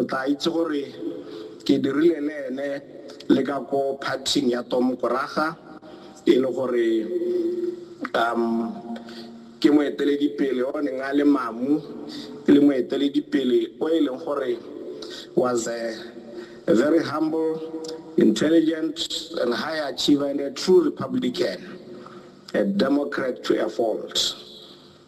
O tla itse gore ke dirile le ene le ka ko phathing ya Tom Koraga e le gore um ke moeteledipele o neng a le mamu e le moeteledipele o e leng gore was a very humble intelligent and high achiever and a true republican a democrat to a fault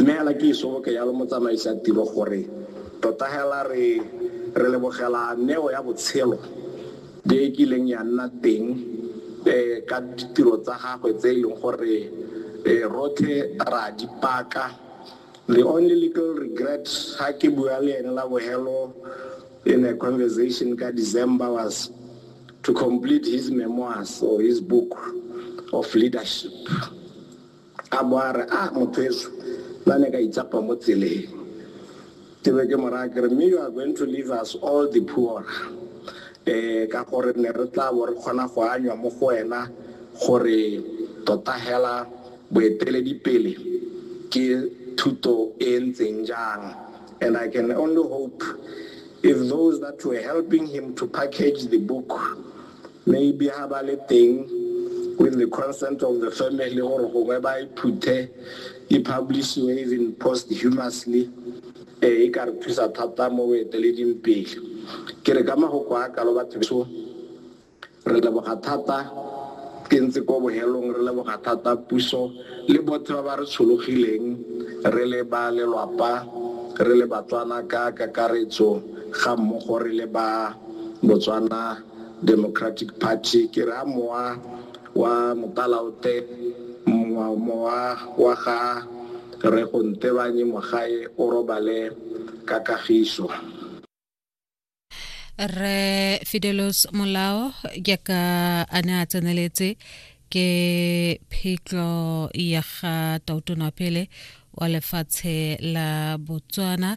Mme hela ke isoboke yalo motsamaisi a tiro gore tota hela re re lebogela neo ya botshelo e e kileng ya nna teng ka ditiro tsa gagwe tse e leng gore rotlhe ra di paka. The only little regret ha ke bua le ene la bohelo in a conversation ka December was to complete his memoirs or his book of leadership. A bo a re, Ah, mothweso, nna ne ka itsapa mo tseleng. Ke be ke mo raya ke re, Mme you are going to leave us all the poorer. Um, ka gore ne re tla bo re kgona go anywa mo go wena gore tota hela boeteledipele ke thuto e e ntseng jang. And I can only hope if those that were helping him to package the book Maybe ha ba le teng with the consent of the family gore gongwe ba e phuthe e publishiwe even posthumously eh, e ka re thusa thata mo boeteleding pele ke re ka magoko a kalo batho beso re leboga thata ke ntse ko bohelong re leboga thata puso le bothe ba ba re tshologileng re le ba lelwapa re le batswana ka kakaretso ga mmogo re le ba Botswana Democratic Party, ke re a mowa wa Mopalaote, mowa mowa wa ga Rre Go Ntebanye Mogae o robale ka kagiso. Rre Fidelos Molao jaaka a ne a tseneletse ke phetlo ya ga tautonwa pele wa lefatshe la Botswana